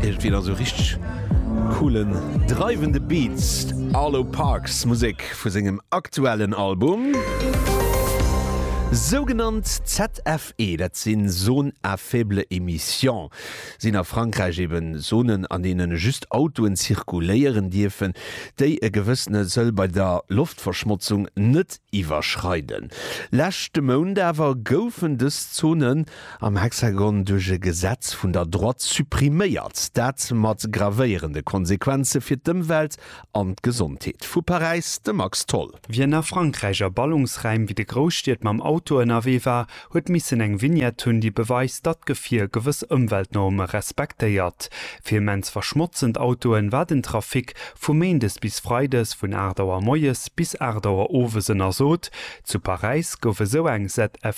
Irgendwie da so richtig coolen, dreiwende Beats. Arlo Parks Musek vu sengem aktuellen Album. Sougenannt ZFE, dat sinn Zones à faible émission, sinn a Frankräich eben Zonen, an deene just Autoen zirkuléieren dierfen, déi e gewëssene Seuil bei der Loftverschmotzung net iwwerschreiden. Leschte Mount awer goufen dës Zonen am Hexagon duerch e Gesetz vun der Droite suppriméiert, dat mat gravéierende Konsequenze fir d'Ëmwelt an d'Gesondheet. Vu Paräis, de Max Tholl. Wien a Frankräich a Ballungsraim wéi de Grousstied mam Auto ënnerwee war, huet missen eng Vignette hunn, déi beweist, datt d'Gefier gewëss Ëmweltnorme respektéiert. Fir immens verschmotzend Autoen war den Trafic vu méindes bis freides vun 8 Auer moies bis 8 Auer owes ënnersot. Zu Paräis gouf esou eng ZFE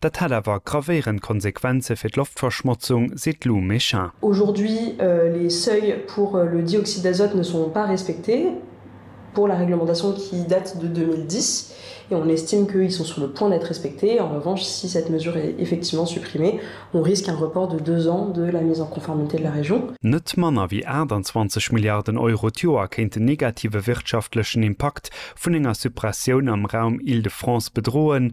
Dat hätt awer gravéierend Konsequenze fir d'Loftverschmotzung, seet Lou Méchin. Aujourd'hui, les seuils pour le dioxyde d'azote ne sont pas respectés pour la réglementation qui date de 2010 et on estime qu'ils sont sur le point d'être respectés. En revanche, si cette mesure est effectivement supprimée, on risque un report de deux ans de la mise en conformité de la région. Net manner wéi 28 Milliarden Euro d'Joer kéint den negative wirtschaftlechen Impakt vun enger Suppressioun am Raum Île-de-France bedroen,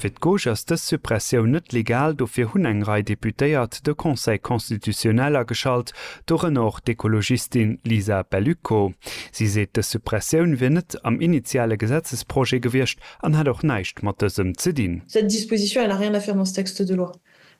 Fir d'Gauche ass dës Suppressioun net legal, dofir hunn eng Rei Deputéiert de Conseil constitutionnel ageschalt, dorënner och d'Ekologistin Lisa Bellico. Si seet, dës Suppressioun wier net am initiale Gesetzesprojet gewiescht an hätt och näischt mat dësem ze dinn. Cette disposition elle a rien à faire dans ce texte de loi.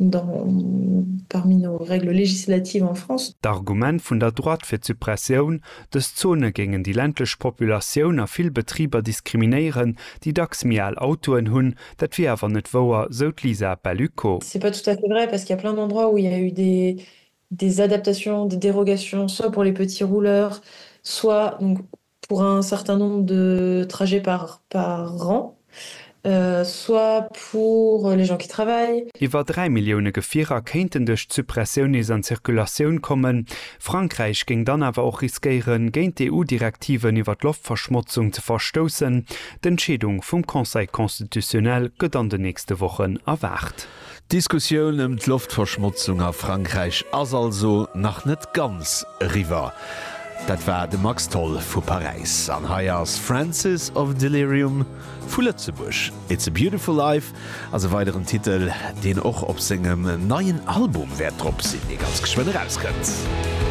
dans parmi nos règles législatives en France. D'Argument vun der Droite fir d'Suppressioun, dës Zone géingen déi ländlech Populatioun a vill Betriber diskriminéieren, déi dacks méi al Autoen hunn, dat wier awer net wouer, sou d'Lisa Bellucco. C'est pas tout à fait vrai parce qu'il y a plein d'endroits où il y a eu des des adaptations, des dérogations, soit pour les petits rouleurs, soit donc pour un certain nombre de trajets par par an, soit pour les gens qui travaillent. Iwwer 3 Millioune Gefierer kéinten duerch d'Suppressioun nees an d'Circulatioun kommen. Frankräich géing dann awer och riskéieren, géint d'EU-Direktiven iwwer d'Loftverschmotzung ze verstoussen. D'Entscheedung vum Conseil constitutionnel gëtt an den nächste Wochen erwaart. D'Diskussioun ëm d'Loftverschmotzung a Frankräich ass also nach net ganz eriwwer. Dat war de Max Tholl vu Paräis. An hei ass Francis of Delirium vu Lëtzebuerg. It's a Beautiful Life ass e weideren Titel, deen och op sengem neien Album wäert drop sinn, dee ganz geschwënn erauskënnt.